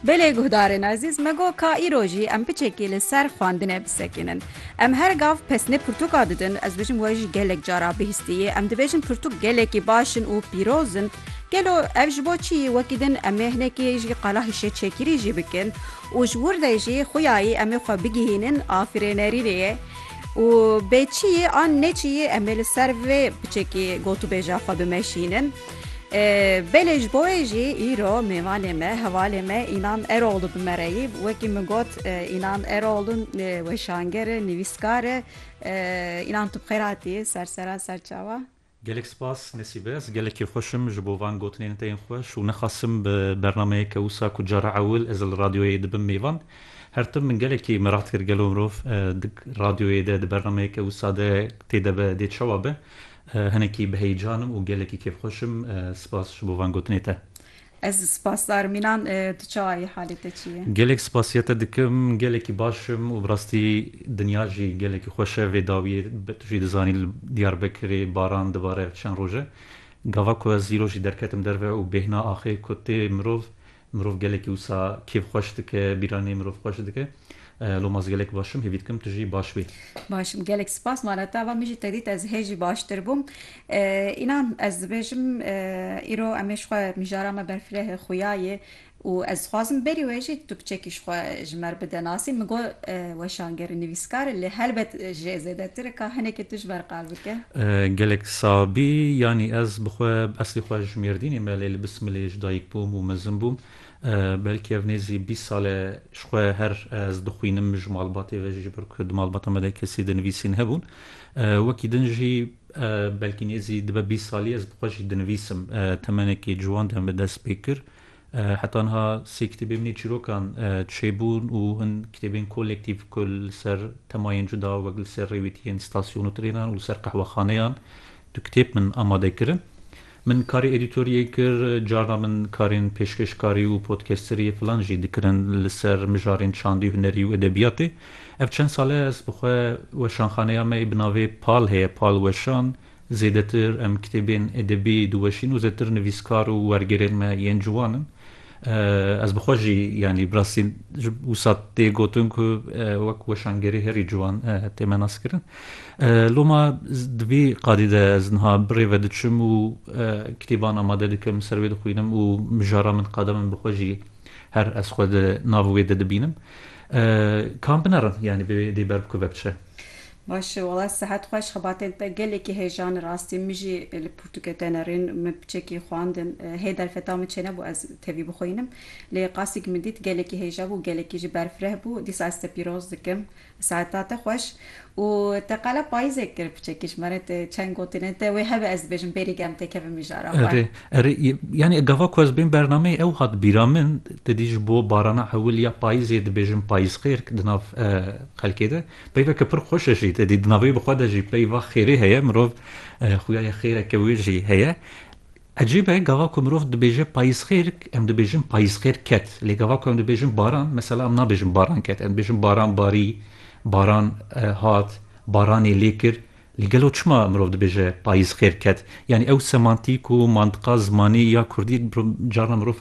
Belê guhdarên ezîz me got ka îro jî em piçekî li ser xwendinê bisekînin. Em her gav pesnê pirtûka didin, ez bijim we jî gelek cara bihîstiyê. Em dibêjin pirtûk gelekî baş in û pîroz in. Gelo ev ji bo çi yî? Wekî din em ê hinekî jî qala hişeçekirî jî bikin û ji wir de jî xuyayî em ê xwe bigihînin afirênerînê yê û bê çi yî an ne çi yî em ê li ser vê piçekî gotûbêja xwe bimeşînin. Belê ji bo wê jî îro mêvanê me hevalê me Înan Eroğlu bi me re yî. Wekî min got Înan Eroğlu weşanger e, nivîskar e. Înan tu bi xêr hatî sersera serçawa. Gelek spas Nesîbe ez gelekî xweş im ji bo van gotinên te yên xweş û nexasim bi bernameyeke wisa ku cara ewil ez li radyoyê dibim mêvan. Her tim min gelekî mirad kir gelo mirov di radyoyê de di bernameyeke wisa de tê de be dê çawa be. Hinekî bi heyecan im û gelekî kêfxweş im. Spas ji bo van gotinê te. Ez spasdar Mînan. Tu çawa yî? Halê te çi ye? Gelek spasiya te dikim. Gelekî baş im û bi rastî dinya jî gelekî xweş e. Vê dawiyê tu jî dizanî li Diyarbekirê baran dibare çend roj e. Gava ku ez îro jî derketim derve û bêhna axê ku tê mirov Mirov gelekî wisa kêf xweş dike, bîranî mirov xweş dike. Lo ma ez gelek baş im, hêvî dikim tu jî baş bî. Baş im. Gelek spas mala te va min jî te dît ez hê jî baştir bûm. Înan ez dibêjim îro em ê ji xwe mijara me berfirehê xuya yê û ez dixwazim berî wê jî tu kiçekî ji xwe ji me re bide nasî. Min got weşanger e, nivîskar e lê helbet ji jê zêdetir e ka hinekê tu ji ber qal bikî. Gelek sabî yanî ez bi xwe bi eslî xwe ji Mêrdînê me lê li Bismilê ji dayik bûm û mezin bûm. Belkî ev nêzî bîst sal e ji xwe her ez dixwînim ji malbatê ve jî ji ber ku di malbata me de kesî dinivîsîn hebûn. Wekî din jî belkî nêzî dibe bîst salî ez bi xwe jî dinivîsim. Temenekî ciwan de em bi dest pê kir. Heta niha sê kitêbê min ê çîrokan çêbûn û hin kitêbên kolektîf ku li ser temayên cuda wek li ser rêwîtiyên stasyon û trênan û li ser qehwexaneyan du kitêb min amade kirin. Min karê edîtoriyê kir, carna min karên pêşkêşkarî û podkesteriyê filan jî dikirin li ser mijarên çandî, hunerî û edebiyatê. Ev çend sal e ez bi xwe weşanxaneya me ê bi navê Pal heye, Pal Weşan, Zêdetir em kitêbên edebî diweşîn û zêdetir nivîskar û wergerên me yên ciwan in. Ez bi xwe jî yanî bi rastî ji wisa tê gotin ku wek weşangerê herî ciwan tê me naskirin. Loma di vî qadî de ez niha bi rê ve diçim û kitêban amade dikim, li ser wê dixwînim û mijara min qada min bi xwe jî her ez xwe di nav wê de dibînim. Kam binerim yanî vê dê ber bikeve biçe? Baş wala sihet xweş xebatên te gelekî hêjane rastî min jî li pirtûkê te nerîn min piçekî xwandin hê derfeta min çênebû ez tevî bixwînim lê qasî ku min dît gelekî hêja bû gelekî jî berfireh bû dîsa ez te pîroz dikim siheta te xweş û te qala payîzek kir piçekî ji me re çend gotine te wê hebe ez dibêjim bêrî germ tê kevin mijara xwe. Erê erê yanî gava ku ez bên bernameyê ew hat bîra min te dî ji bo barana ewil ya payîzê dibêjim payîzxêrk di nav xelkê de. Peyveke pir xweş e jî te dî di navê bi xwe de jî peyva xêrê heye mirov xuyaya xêreke wê jî heye. Ecêb e gava ku mirov dibêje payîzxêr em dibêjin payîzxêr ket lê gava ku em dibêjin baran mesela em nabêjin baran ket em dibêjin baran barî baran hat baranê lê kir lê gelo çima mirov dibêje payîzxêr ket yanî ew semantîk û mantiqa zimanî ya kurdî carna mirov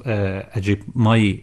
ecêb mayî